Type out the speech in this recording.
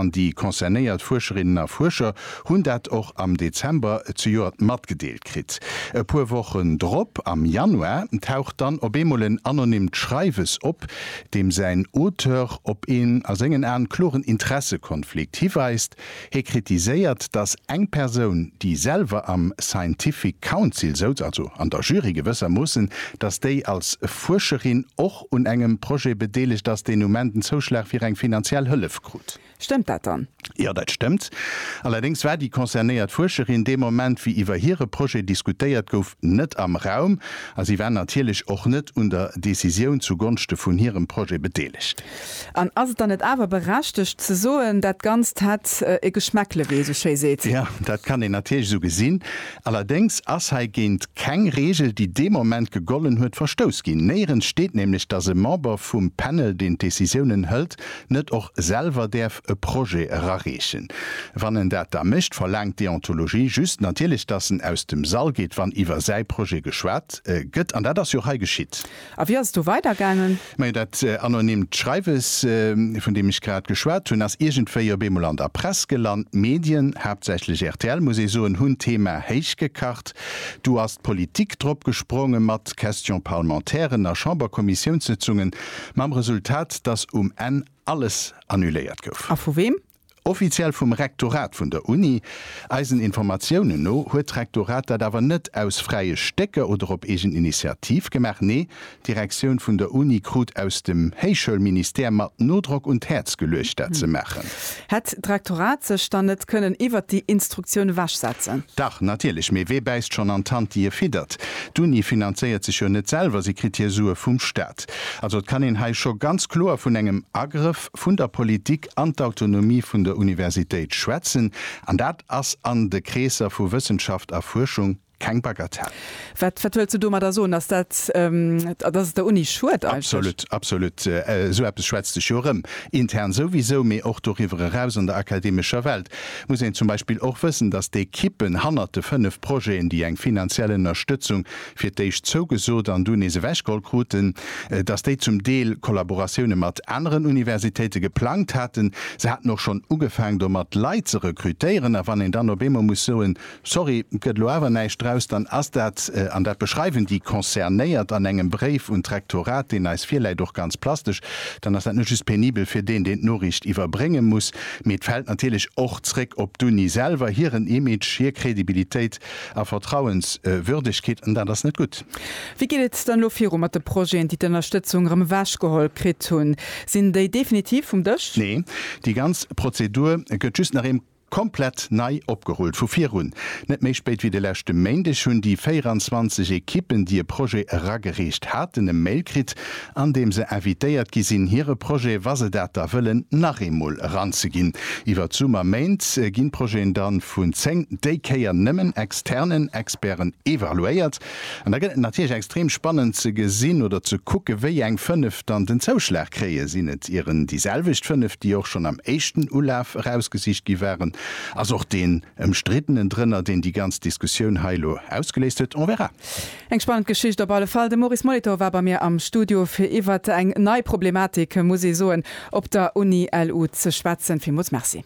an déi concernéiert Fuerscherinnen a Fuerscher hunn dat och am Dezember zejoert matgedeelt kritt. E puer Wochen drop, am Januar, taucht dann op eemol en anonymt Schreiwes op, deem säin Auteur op een a sengen Aen kloren Interessekonflikt hiweist, Hie kritiséiert, datt eng Persoun, déi selwer am Scientific Council souz, also an der Jury gewëssermoossen, datt déi als Fuerscherin och. un engem Projet bedeelegt ass, deen um Enn den Zouschlag fir eng finanziell Hëllef krut. Stëmmt dat dann? Jo, dat stëmmt. Allerdéngs war déi concernéiert Fuerscherin dee Moment, wéi iwwer hire Projet diskutéiert gouf, net am Raum a si war natierlech och net un der Decisioun zu Gonschte vun hirem Projet bedeelegt. An ass et dann net awer berechtegt ze soen, dat Ganzt hätt e Geschmäckle, wéi ee sou schéi seet? Jo, dat kann een natierlech esou gesinn. Allerdéngs ass hei géint keng Reegel, déi dee Moment gegollen huet, verstouss ginn. Néierens steet nämlech, datt e Member vum Panel, deen d'Decisiounen hëlt, net och selwer däerf e Projet erareechen. Wann en dat da mécht, verlaangt d'Deontologie just natierlech, datt en aus dem Sall geet, wann iwwer säi Projet geschwat gëtt. An dat ass jo hei geschitt. A wéi ass et do weidergaangen? Majo, dat anonymt Schreiwes, vun deem ech grad geschwat hunn, ass iergendwéi op eemol an der Press gelant. D'Medien, haaptsächlech rtl, muss ee soen, hunn d'Thema héichgekacht. Du ass d'Politik drop gesprongen, mat Questions parlementairen a Chamberkommissiounssëtzungen, mam Resultat, datt um Enn alles annuléiert gouf. A vu weem? Offiziell vum Rektorat vun der Uni. Eisen Informatiounen no huet d'Rektorat dat awer net aus fräie Stécker oder op eegen Initiativ gemaach. Nee, d'Direktioun vun der Uni krut aus dem Héichschoulministère mat Nodrock un d'Häerz geluecht, dat ze maachen. Hätt d'Rektorat sech dann net kënnen iwwert déi Instruktioun ewechsetzen? Dach, natierlech. Mee wee bäisst schonn an d'Hand, déi e fiddert? D'Uni finanzéiert sech jo net selwer, si kritt hir Sue vum Staat. Also et kann een hei scho ganz kloer vun engem Agrëff vun der Politik an d'Autonomie vun der Universitéit schwätzen, an dat ass an de Kreesser vu Wëssenschaft a Fuerschung keng Bagatell. Wat wëlls du domadder soen? Ass dat, datt et der Uni schuet eigentlech? Absolut, absolut. Esou eppes schwätzt sech jo erëm. Intern souwisou, mee och doriwwer eraus an der akademescher Welt muss een zum Beispill och wëssen, datt d'Ekippen hannert de fënnef Projeten, déi eng finanziell Ënnerstëtzung fir d'éischt zougesot an du nees ewechgeholl kruten, datt déi zum Deel Kollaboratioune mat aneren Universitéite geplangt haten. Se haten och schonn ugefaang domat, Leit ze rekrutéieren. A wann een dann op eemol muss soen, Sorry, gëtt elo awer näischt draus, dann ass dat, an dat beschreiwen déi Concernéiert an engem Bréif un d'Rektorat, deen eis virläit, och ganz plastesch, dann ass dat net just penibel fir deen, deen d'Noriicht iwwerbrénge muss, mee et fält natierlech och zréck op d'Uni selwer, hiren Image, hir Credibilitéit A Vertrauenswürdegkeet, an dat ass net gutt. Wéi geet et dann elo viru mat de Projeten, déi d'Ënnerstëtzung erëm ewechgeholl kritt hunn? Sinn déi definitiv vum Dësch? Nee, déi ganz Prozedur gëtt just nach eemol komplett nei opgerullt, vu virun. Net méi spéit wéi de leschte Méindeg hunn déi 24 Ekippen, déi e Projet eragereecht haten, e Mail kritt, an deem se invitéiert gi sinn, hire Projet, wa se dat da wëllen, nach eemol eranzeginn. Iwwer d'Summerméint ginn d'Projeten da vun zéng, déi Kéier nëmmen externen, Experten evaluéiert. An da gëtt et natierlech extrem spannend ze gesinn oder ze kucken, wéi eng fënnef dann den Zouschlag kréien. Sinn et ieren déi selwecht fënnef, déi och schonn am éischten Ulaf erausgesicht gi waren? Ass och deen Ëmstriddenen drënner, deen déi ganz Diskussioun hei elo ausgeléist huet? On verra. Eng spannend Geschicht op alle Fall. De Maurice Molitor war bei mir am Studio fir iwwert eng nei Problematik, muss ee soen, op der Uni LU ze schwätzen. Villmools Merci.